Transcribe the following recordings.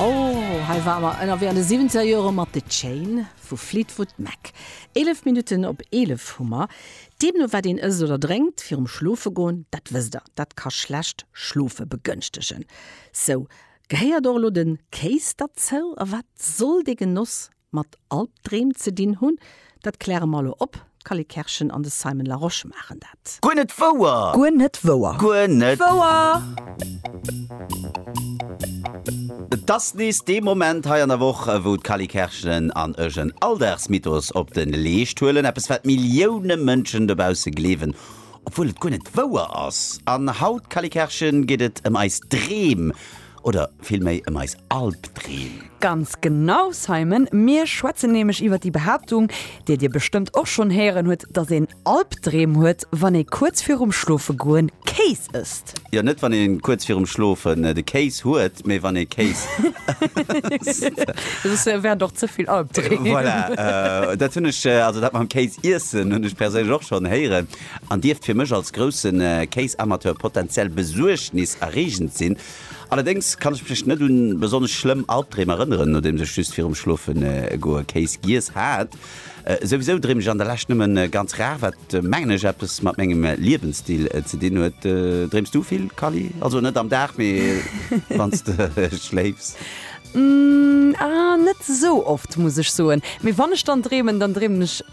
Oh, hei ware mer ënnerwee an de siwwenzeger Jore mat The Chain vu Fleetwood Mac. Eelef Minutten op eelef hu mer. Deemno wat een ësst oder drénkt virum schlofe goen, dat wësst der, dat ka schlecht Schlofe begënschtegen. Sou, gehéiert och elo de Kéis derzou? A wat soll dee Genoss mat Albdreem ze dinn hunn, dat kläre mer elo op. D'Cally Kerschen an de Simon Larosche maachen dat. Guer net wouer! Guer net wouer! Guer net wouer! Et ass nees dee Moment hei an der Woch, wou d'Cally Kerschen an ech en Alldagsmythos op de Leescht huelen, eppes wat Millioune Mënschen dobausse gleewen, obwuel et guer net wouer ass. An haut, Cally Kerschen, geet et ëm eis Dreem. Oder villméi ëm eis Albdreem? Ganz genau, Simon! Mir schwätzen nämlech iwwer déi Behaaptung, déi dir bestëmmt och schonn héieren hutt, dass een Albdreem huet, wann ee kuerz virum Schlofegoen Kéis ësst. Jo, net wann ee kuerz virum Schlofen de Kéis huet, mee wann ee Kéis ësst. Soss wären et och ze vill Albdreem. Voilà, dat hunn ech, also dat mam Kéis iessen, hunn ech perséinlech och schonn héieren. an dierft fir mech als grousse Kéisamateur potenziell besuergniserreegend sinn. Allerdéngs kann ech mech net un besonnesch schlëmm Albdreem erënneren, nodeems ech just virum Schlofe goe Kéis giess hat. Souwisou dreem ech an der Lescht nëmme ganz rar, wat mengen ech eppes mat mengem Liewensstil ze dinn huet. Dreems du vill, Kally? Also net am Dag, mee wann s de schléifs? Ahh, net esou oft, muss ech soen. Mee wann ech dann dreemen, dann dreemen ech.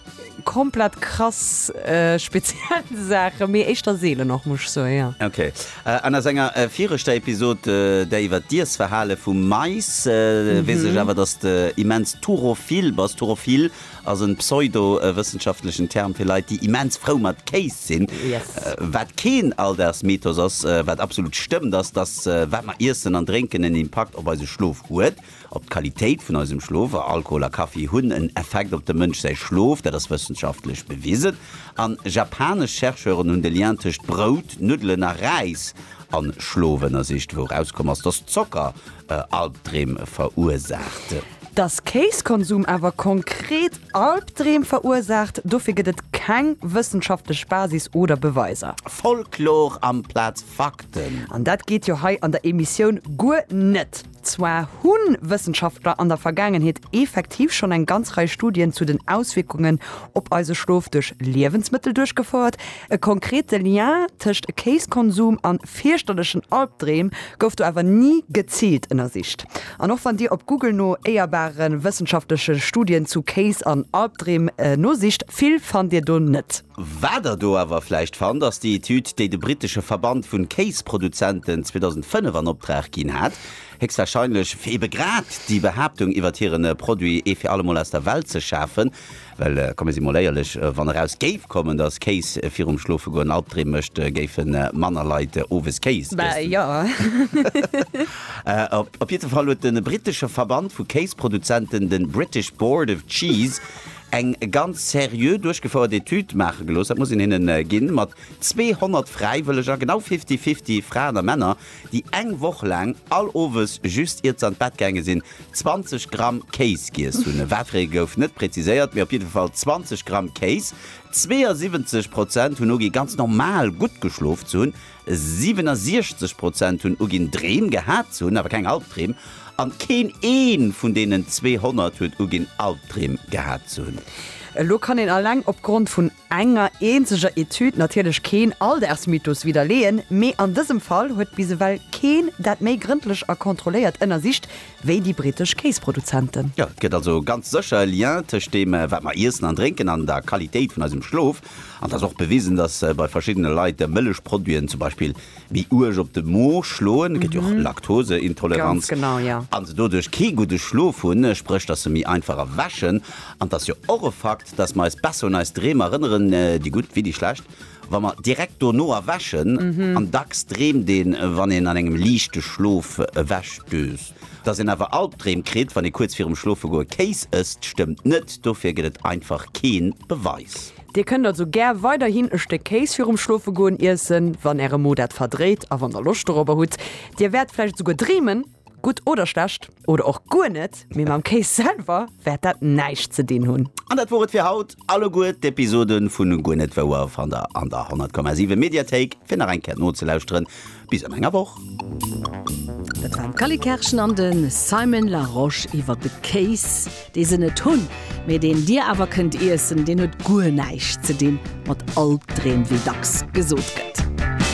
komplett krass speziell Saachen, mee éischter seelen och, muss ech soen, jo. Ok. An a senger viregter Episod, där iwwert d'Iessverhale vum Mais, weess ech awer, dass de immens turophil bass. Turophil ass en pseudo-wëssenschaftlechen Term fir Leit, déi immens frou mat Kéis sinn. Yes. Wat keen Alldagsmythos ass, wat absolut stëmmt, ass, dass wat mer iessen an drénken en Impakt op eise Schlof huet. Op d'Qualitéit vun eisem Schlof, a Alkohol a Kaffi hunn en Effekt op dem Mënsch säi Schlof, dat ass wëssenschaftlech bewisen. An japanesch Chercheuren hunn de Lien tëscht Brout, Nuddelen a Räis an Schlof ënnersicht, wou erauskomm ass, dass Zocker Albdreem verursaacht. Dass Kéiskonsum awer konkret Albdreem verursaacht, dofir gëtt et keng wëssenschaftlech Basis oder Beweiser. Folklor amplaz Fakten! An dat geet jo hei an der Emissioun guer net! Zwar hu Wëssenschaftler an der Vergaangenheet effektiv schonn eng ganz Rei Studien zu den Auswierkungen op eise Schlof duerch Liewensmëttel duerchgefouert. E konkrete Lien tëscht Kéiskonsum a fierchterlechen Albdreem gouf do awer ni geziilt ënnersicht. An och wann Dir op Google no éierbare wëssenschaftleche Studien zu Kéis an Albdreem nosicht, vill fannt Dir do net. Wat der do awer vläicht fannt, ass déi Etüd, déi de brittesche Verband vun Kéisproduzenten 2005 an Opdrag ginn hat, héchstwahrscheinlech fir ebe grad déi Behaaptung iwwert hiren Produit ee fir allemol aus der Welt ze schafen. Well komme si mol éierlech, wann eraus géif kommen, dass Kéis virum Schlofegoen Albdreem mécht, géife manner Leit owes Kéis iessen. Op jiddefall huet de brittesche Verband vu Kéisproduzenten, de British Board of Cheese, eng ganz seriö duerchgefouert Etüd maache gelooss, dat muss een hinnen ginn, mat 200 Fräiwëlleger, genau fifty-fifty Fraen a Männer, déi eng Woch laang all Owes, just iert se an d'Bett gaange sinn, 20 Gramm Kéis giess hunn. Wat fir ee gouf net präziséiert, mee op jidde Fall 20 Gramm Kéis. 72 Prozent hunn ugi ganz normal gutt geschlof ze hunn, 67 Prozent hunn uginn, Dreem gehat ze hunn, awer keng Albdreem. An keen ee vun deenen 200 huet uginn, Albdreem gehat ze hunn. Elo kann een alleng opgrond vun enger eenzeger Etüd natierlech keen Alldaagsmythos widderleeën, mee an dësem Fall huet bis ewell keen dat méi grëndlech a kontrolléiert ënnersicht wéi déi brittesch Kéisproduzenten. Jo, et gëtt also ganz sécher e Lien tëscht deem, wat mer iessen an drénken, an der Qualitéit vun eisem Schlof. An et ass och bewisen, dass bei verschiddene Leit Mëllechproduiten zum Beispill méi uerg op de Mo schloen, et gëtt jo och Laktoseintoleranz, a se doduerch kee gudde Schlof hunn, spréch dass se méi einfach erwächen. An et ass jo och e Fakt, dass mer eis besser un eis Dreem erënneren, déi gutt wéi déi schlecht, wa mer direkt dono erwächen. An dacks dreemt een, wann een an engem liichte Schlof ewechdöst. Dass een awer Albdreem kritt, wann ee kuerz virum Schlofegoe Kéis ësst, stëmmt net. Dofir gëtt et einfach kee Beweis. Dir kënnt also gär weiderhin e Stéck Kéis virum Schlofegoen iessen, wann Äre Mo dat verdréit a wann Der Loscht dorobber hutt. Dir wäert vläicht esouguer dreemen, gutt oder schlecht, oder och guer net, mee mam Kéis selwer wäert dat näischt ze dinn hunn. An dat wor et fir haut. Alleguer d'Episode vu Guer net wouer fannt Der an der 100,7 Mediathéik, fir nach eng Kéier nozelauschteren. Bis an enger Woch! Dat waren d'Cally Kerschen an de Simon Larosche iwwer de Kéis, dee se net hunn, mee deen Dir awer kënnt iessen. Deen huet guer näischt ze dinn mat Albdreem, wéi dacks gesot gëtt.